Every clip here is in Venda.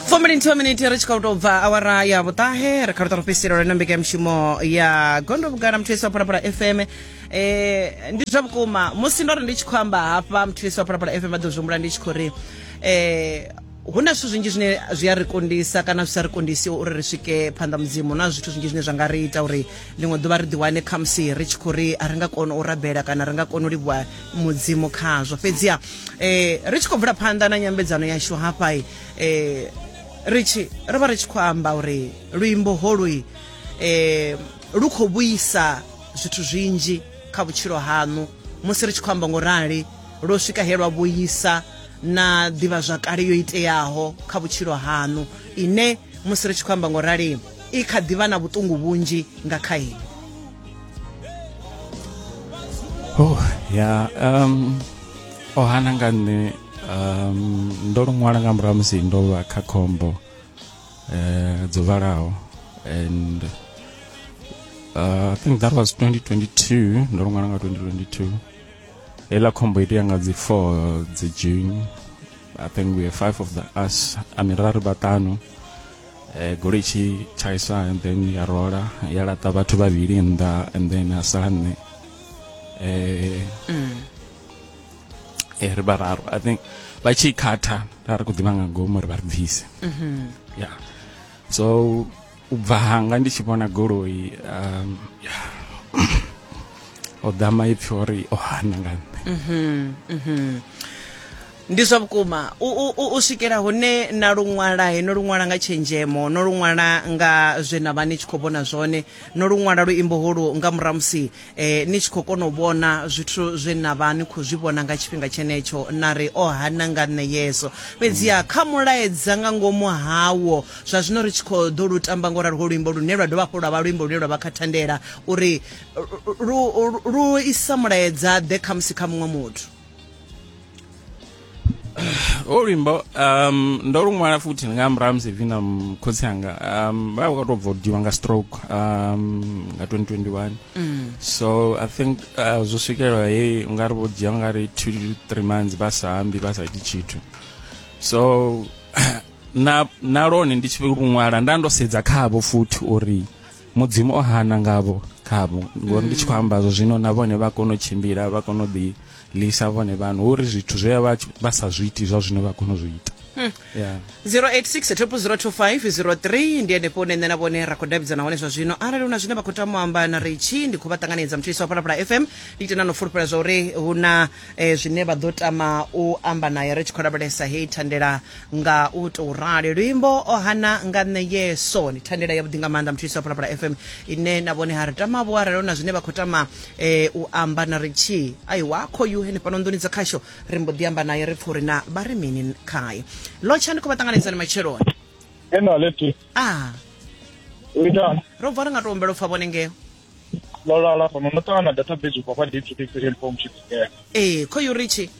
fombilinthiwa miniti ri tshi khou tou bva awara ya vhuṱahe ri kha luṱa lufhisiro lwena mbekanyamushumo ya gondo vhugala muthu yesi wa phalaphala fm eh ndi zwa vhukuma musi ndo ri ndi tshi khou amba hafha muthu yesi wa phalaphala fm vha ḓo zwi humbula ndi tshi khou ri eh hu na zwithu zwinzhi zwine zwi a ri kundisa kana zwi sa ri kundisi uri ri swike phanḓa mudzimu na zwithu zwinzhi zwine zwa nga ri ita uri ḽiṅwe ḓuvha ri ḓiwane khamusi ri tshi khou ri a ri nga koni u rabela kana ri nga koni u livhuwa mudzimu khazwo fhedziha eh, ri tshi khou bvula phanḓa na nyambedzano yashu hafha eh, ri tshi ri vha ri tshi khou amba uri luimbo holui eh, lu khou vhuisa zwithu zwinzhi kha vhutshilo haṋu musi ri tshi khou amba ngo rali lwo swika he lwa vhuisa na ḓivhazwakale yo iteaho kha vhutshilo haṋu ine musi ri tshi khou amba ngo rali i kha ḓivha na vhuṱungu vhunzhi nga kha ini oh ya um o hana nga nṋe um ndo lu ṅwala nga murahu musi ndo vha kha khombo eh dzo vhalaho and uh, i think that was 2022 ndo lu ṅwala nga 2022 hela khombo itea nga dzi 4 dzi june i think we are five of the us amiraru vhaṱanu eh, goloi tshi thaisa and then ya rola ya laṱa vhathu vhavhili nnḓa and then a sala nṋe eh, mm. eh, ri vhararu i think vha tshi khatha ra ri khou ḓivha nga ngomu ri vha ri bvise mm -hmm. yeah so u bva hanga ndi tshi vhona goloi um, yeah. o ḓa maipfi ori o hana nga nṋe mm -hmm. mm -hmm. Ndi zwa vhukuma. U, u, u, u swikela hune na lu ṅwala, he no lu ṅwala nga tshenzhemo, no lu ṅwala nga zwe na vha ni tshi khou vhona zwone, no lu ṅwala luimbo holu nga murahu musi eh, ni tshi khou kona u vhona zwithu zwe na vha ni khou zwi vhona nga tshifhinga tshenetsho, na ri, O hana nga nṋe Yesu. Fhedziha kha mulaedza nga ngomu hawo, zwa zwino ri tshi khou ḓo lu tamba ngo ralo ho luimbo lune lwa dovha hafhu lwa vha luimbo lune lwa vha kha thandela uri lu, lu, lu isa mulaedza ḓe khamusi kha muṅwe muthu. ho luimbo um ndo lu ṅwala futhi ndi nga murahu musi vina khotsi anga um vha vha tou bva u diwa nga stroke um nga 2021 so i think uh, zwo swikelela he u nga ri vho dzhia nga ri two to three months vha sa ambi vha sa iti tshithu so na na lone ndi tshi lu ṅwala nda ndo sedza khavho futhi uri mudzimu o hana ngavho khavho ngori ndi tshi khou amba zwo zwino na vhone vha kona u tshimbila vha kona u ḓi lisa vhone vhanu hu uri zwithu zwe vha tshi- vha sa zwi iti zwa zwino vha kona u zwi ita Yeah. 086 02503 ndi henefho une nṋe na vhone ra khou davhidzana hone zwa zwino arali hu na zwine vha khou tama u amba na ritshi ndi khou vha ṱanganedza mutshisi wa phalaphala fm ndi ite na no fulufhela zwa uri hu na e, zwine vha ḓo tama u amba naye ri tshi khou lavhelesa heyi thandela nga u tou rali luimbo o hana nga nṋe yeso ndi thandela yavhuḓi nga maanḓa muthu isa phalaphala fm ine na vhone ha ri tama vho aralo na zwine vha khou tama eh, u amba na ri tshi ai wakho yu henefhano nḓuni dza khasho ri mbo ḓi amba naye ri pfha uri na vha ri mini khae lotsha ndi khou vha ṱanganedzani matsheloni Ena leti. ah Uitani. ro bva ri nga tou humbela u pfha vhone ngeo ḽo lala fhano ndo ṱangana database ubva kwa deep six and form chips ee eh, khoyu richi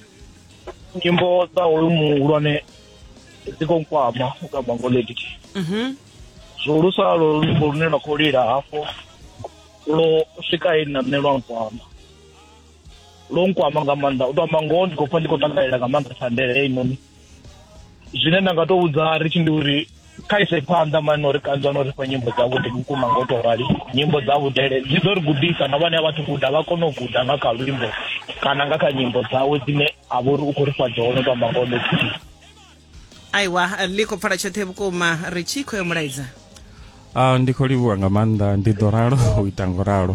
nyimbo dza hoyu muhulwane dzi khou nkwama u ka bango lady mhm zwihulusa lo luimbo lune lwa khou lila hafho lwo swika he nna nṋe lwa nkwama lwo nkwama nga maanḓa u tou amba ngoho ndi khou pfa ndi khou takalela nga maanḓa thandele heinoni zwine nda nga to vhudza ri tshi ndi uri kha ise phanḓa mani uri kanzwa no ri fha nyimbo dzavhuḓi vhukuma nga u to rali nyimbo dza vhudele dzi ḓo ri gudisa na vhane a vhathu guda vha kone u guda nga kha luimbo kana nga kha nyimbo dzawe dzine a vha uri u khou ri fha dzone to amba ngoho methii aiwa ḽi khou pfala tshoṱhe vhukuma ri tshi khou yo mulaidza a ah, ndi khou livhuwa nga maanḓa ndi ḓo ralo u ita ngo ralo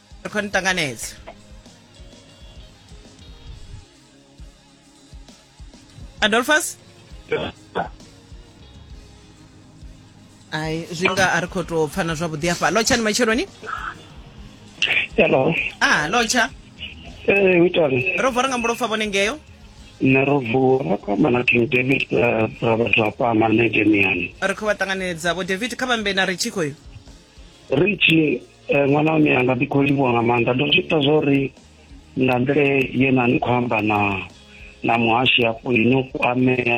ri khou ni ṱanganedza adolphus ai zwi nga a ri khou tou pfana zwavhuḓi afha lotsha ni matsheloni hello a lotsha ee u itani ro vuwa ri nga mbulopfa vhone ngeyo nṋe ro vuwa ra kwamba na king david eh, ra vha zwa kwama nṋe demiani ri khou vha ṱanganedza vho david kha vhambe na ritshi khoyo ri tshi Eh, ṅwana wa miyanga ndi khou livhuwa nga maanḓa ndo zwi ita zwo ri nga nḓila ye na ni khou amba na na muhashi hafho ino ku amea